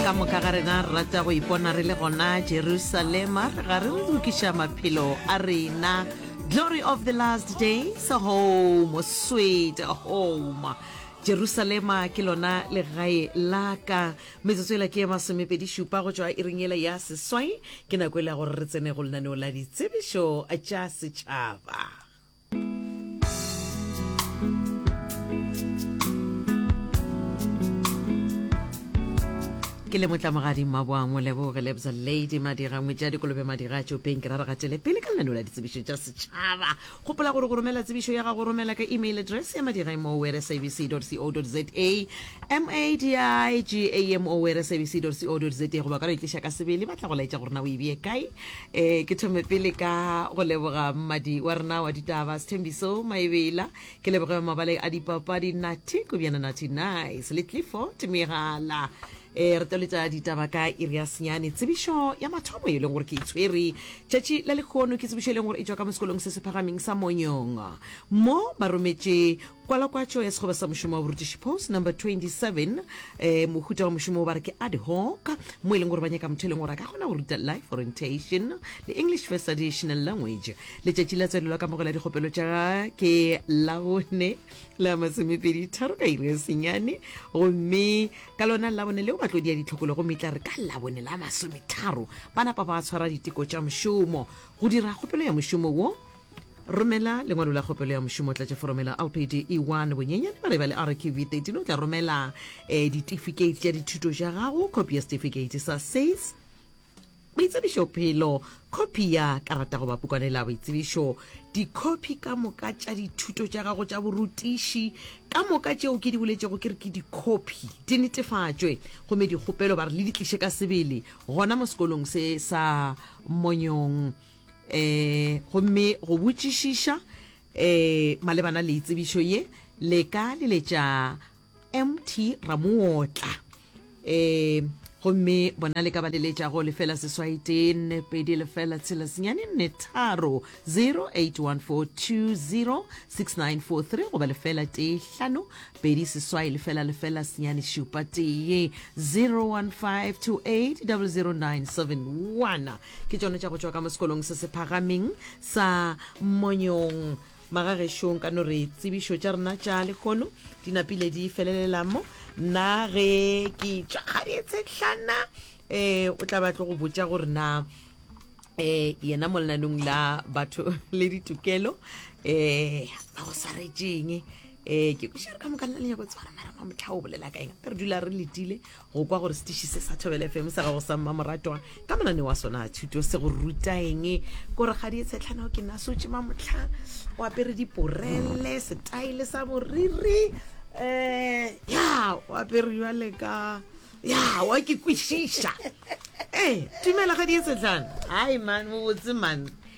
ka moka ga rena re rata go ipona re le gona jerusalema ga re lokiša maphelo a rena glory of the last days home sweet home jerusalema ke lona legae la ka metsotso ela ke ye masomepedi šupa go tšwa iring ela ya seswai ke nako e le ya gore re tsene go lenaneo la ditsebišo tša setšhaba ke le motlamogadi maboang moleboge lebza lady madira ngwetša dikolobe madira a tšopeng ke ra re gatele pele ka lenaneo la ditsebišo tša setšhaba gopola gore go romela tsebišo ya gago romela ka email address ya madira mower sabc co za madigamo wer sabc co za goba ka no e tliša ka sebele ba tla go laetša gore na o e bee kae e ke thome pele ka go leboga mmadi wa rena wa ditaba sethembiso maebela ke leboge mabaleng a dipapadi nathi kobjana nathi nice le clifford megala e re toletša ditaba ka iri ya senyane tsebišo ya mathomo e leng gore ke itshwere e tšatši la lekgono ke tsebišo e leng gore e tšwa ka mo sekolong se se phagameng sa monyong mo ba rometše Kwalakwatšo ya Sekgoba sa Mošomo wa Borutiši, post number 27. Um mohuta wa mošomo wo ba re ke ad hoc, mo e leng gore ba nyaka motho e leng gore a ka kgona go ruta life orientation le English first additional language. Letšatši la tswalelo la kamogelo ya dikgopelo tša ga ke Labone la masomepedi tharo ka iri ya senyane, gomme ka lona Labone leo batlodi ya ditlhokolo gomme e tla re ka Labone la masometharo ba napa ba tshwara diteko tša mošomo go dira kgopelo ya mošomo wo. Romela lengwalo la kgopelo ya mošomo, tlatša forome la lpd E1, bonyenyane ba re ba le RQV 13, o tla romela eh, ditifikeiti tša dithuto tša gago, khopi ya setifikeiti sa SACE, boitsebišophelo, khopi ya karata goba pukwane la boitsebišo, dikhopi ka moka tša dithuto tša gago tša borutiši ka moka tšeo ke di boletšego ke re ke dikhopi di netefatšwe gomme dikgopelo ba re le di tliše ka sebele gona mo sekolong se sa monyong um gomme go botšišiša um malebana le itsebišo ye le ka leletša mt ramootla um gomme bona le ka ba leletša go lefela seswai tee nne pedi lefela tshela senyane nne tharo 0814206943 goba lefela tee hlano pedi seswai lefela lefela senyane šupa tee 0152800971 ke tšone tša go tšwa ka mo sekolong se se phagameng sa monyong magagešong ka no re tsebišo tša rena tša lekgono di napile di felelelamo nna ge ke tšwa kgadiethetlhana um o tla ba tlo go botša gore na um yena molenanong la batho le ditokelo um ba go swaretšeng um ke kušere ka moka nna lenyako tswara mara ma motlha o bolela ka eng re dula re letile go kwa gore setiši se sa thobele fm sa gago sa mmamoratwa ka monane wa sona a thuto se go rutaeng kore ga di e tshetlhanao ke nna sotse ma motlha o apere diporele setaele sa boriri um ya o apere jale ka ya wa ke kwešiša ee eh, tumela ga di e tshetlhana hai man mobotse man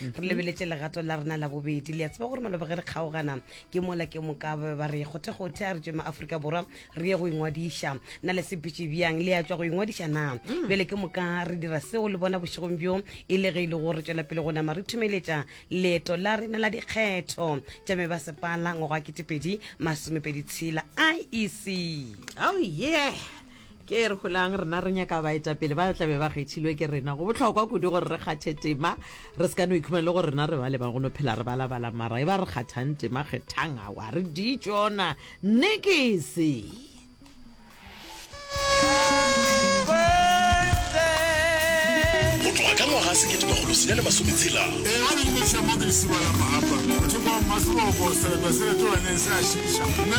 re lebeletse legato la rena la bobedi le a tseba gore maloba ge re kgaogana ke mola ke moka ba be ba re kgothekgothe a re tswe maaforika borwa re ye go ingwadiša na le sepitše bjang le ya tswa go ingwadiša na mm. bjale ke moka re dira seo le bona bošegong bjo e le ge e le go re tswela pele go nama re thumeletša leeto la rena la dikgetho tša me ba sepala ngwago wa ketepedi masomepedi tshela iec oh yeah Ge re holang, rena re nyaka baetapele ba tla be ba kgethilwe ke rena. Go bohlokwa kudu gore re kgathe tema, re se ka no ikhumana le gore rena re bale ba go no phela re balabala. Mara e ba re kgathang tema, kgethang awa re di tšona nekese. Go tloga ka ngwaga sekete makgolo senyane masome tshela, Ee, a le neša mabese ba la mo hapa. Mothekwa wa Mmasebogo, sereto se retoganeng se a šiša. Mme